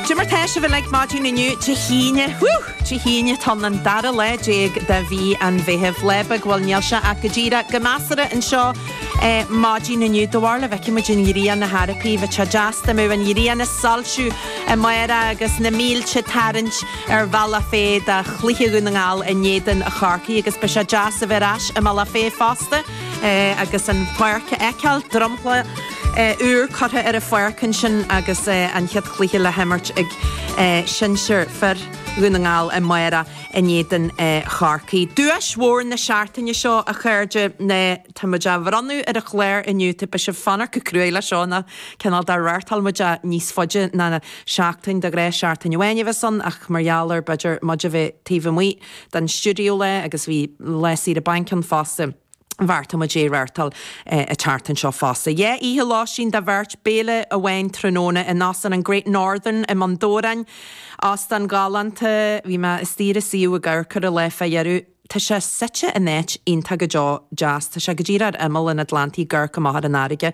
Cad é mar tá sibh uilig maidin inniu, Dé hAoine. Dé hAoine, tá an dara lá déag de mhí an Mheithimh. Lá beag, bhuel, níl sé ach go díreach go measartha anseo maidin inniu. Do bharúil an bhfeicfidh muid an ghrian ar chor ar bith, bheadh sé deas dá mbeadh an ghrian ag soilsiú amárach agus na mílte ag tarraingt ar Bhealach Féich do chluiche Dhún na nGall in éadan Chorcaí agus beidh sé deas a bheith ar ais i mBealach Féich fosta agus an pháirc a fheiceáil, dromchla. úr curtha ar an pháirc ansin agus an chéad chluiche le himirt ag sinsir fir Dhún na nGall amárach in éadan Chorcaí. Duais mhór na seachtaine seo, a chairde, tá muid á bhronnadh ar an chlár inniu, tá sibh ag fanacht go cruaidh leis seo, nó cineál de reáchtáil muid é níos faide ná seachtain, de ghnáth seachtain amháin a bheas ann ach mar gheall ar b'fhéidir muid a bheith taobh amuigh den stiúideo lá agus bhí lá saoire bainc ann fosta. bheartaigh muid é a reáchtáil an tseachtain seo fosta. Dhá oíche lóistín do bheirt, béile amháin tráthnóna in Óstán an Great Northern i mBun Dobhráin. Óstán galánta. Bhí mé istigh ar a suíomh ag cuartú an lá fá dheireadh. Tá sé suite in áit iontach go deo deas. Tá sé go díreach ar imeall an Atlantaigh ag amharc amach ar an fharraige.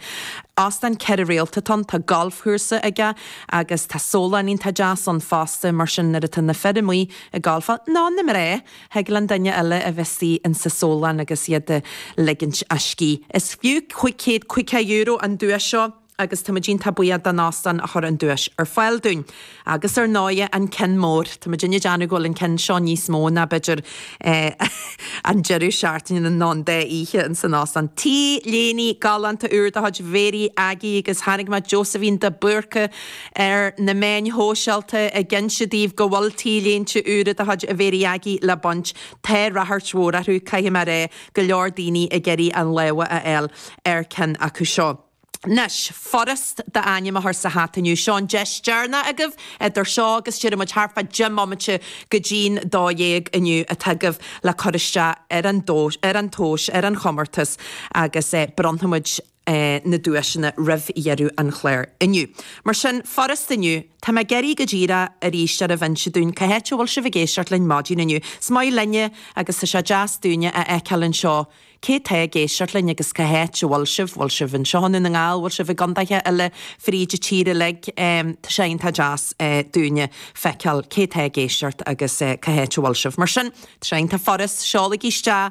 Óstán ceithre réalta atá ann. Tá galfchúrsa aige agus tá sólann iontach deas ann fosta mar sin nuair atá na fir amuigh ag galfáil, nó na mná! Thig leis an duine eile a bheith suí insa sólann agus iad ag ligint a scíth. Is fiú cúig chéad caoga euro an duais seo agus táimid iontach buíoch don óstán a chuir an duais ar fáil dúinn. Agus ar ndóighe, an ceann mór. Tá muidinne ag déanamh go bhfuil an ceann seo níos mó ná, b'fhéidir, an deireadh seachtaine nó an dá oíche ins an óstán. T-léine galánta úr de chuid Mhary Aggie agus chonaic mé Josephine de Búrca, ar na meáin shóisialta ag inse daoibh go bhfuil T-léinte úra de chuid Mhary Aggie le baint. Tá ráchairt mhór orthu, caithfidh mé a rá, go leor daoine ag iarraidh a lámha a fháil ar cheann acu seo. Anois, furast d'ainm a chur sa hata inniu. Seo an deis deireanach agaibh idir seo agus déarfaidh muid thart fá deich mbomaite go dtí'n dó dhéag inniu atá agaibh le cur isteach ar an duais, ar an chomórtas agus bronnfaimid, na duaiseanna roimh dheireadh an chláir inniu. Mar sin, furast inniu. Tá mé ag iarraidh go díreach oraibhse a inse dúinn cá háit a bhfuil sibh ag éisteacht linn maidin inniu. Is maith linne agus tá sé deas dúinne a fheiceáil anseo cé tá ag éisteacht linn agus cá háit a bhfuil sibh, bhfuil sibh anseo i nDún na nGall, bhfuil sibh i gcondaetha eile fríd an tír uilig. Tá sé iontach deas dúinne feiceáil cé tá ag éisteacht agus cá háit a bhfuil sibh. Mar sin, tá sé iontach furast, seolaigí isteach.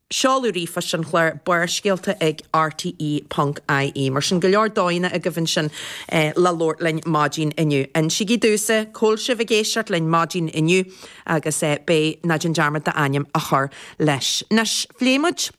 Seoladh ríomhphoist an chláir Barrscéalta ag rte ponc ie mar sin go leor dóigheanna agaibh ansin le labhairt linn maidín inniu. Insígí domhsa cá bhfuil sibh ag éisteacht linn maidín inniu agus beidh ná déan dearmad d'ainm a chur leis. Anois, phléigh muid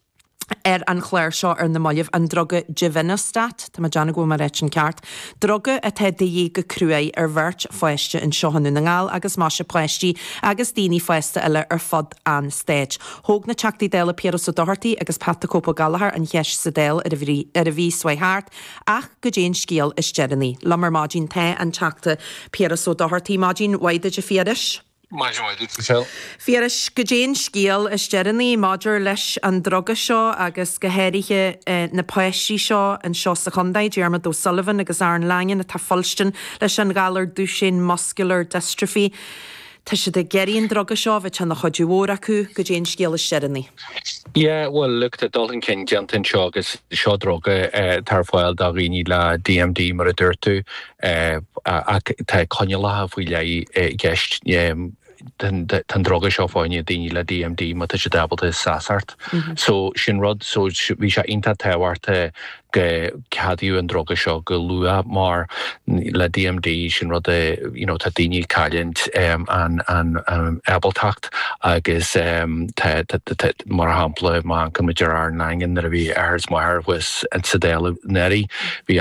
ar an chlár seo ar na mallaibh an druga Givinostat, tá mé ag déanamh go bhfuil mé ag ráit an ceart, druga atá de dhíth go cruaidh ar bheirt pháiste anseo i nDún na nGall agus más ea páistí agus daoine fásta eile ar fud an stáit. Thóg na Teachtaí Dála Piaras Ó Dochartaigh agus Pat 'The Cope' Ó Gallchóir an cheist sa Dáil ar an mhí seo chuaigh thart, ach cad é an scéal is deireanaí? Liom ar maidin tá an Teachta Piaras Ó Dochartaigh, maidin mhaith duit a Phiarais. Maidin mhaith duit, Michelle. Phiarais, cad é an scéal is deireanaí maidir leis an druga seo agus go háirithe na páistí seo anseo sa chontae, Diarmuid O'Sullivan agus Aaron Langan atá ag fuilstin leis an ghalar Duchenne Muscular Dystrophy. Tá siad ag iarraidh an druga seo a bheadh ina chuidiú mhór acu, cad é an scéal is deireanaí. Yeah, well look, tá dul chun cinn déanta anseo agus seo druga atá ar fáil do dhaoine le DMD, mar a dúirt tú, ach tá coinníollacha faoi leith i gceist. Tá an druga seo fá choinne daoine le DMD má tá siad ábalta seasacht. So sin rud, so bhí sé iontach tábhachtach go ceadaíodh an druga seo go luath mar le DMD sin rud a you know tá daoine ag cailliúint an an ábaltacht agus tá tá mar shampla má amharcann muid ar Aaron Langan nuair a bhí athair is máthair thuas sa Dáil anuraidh bhí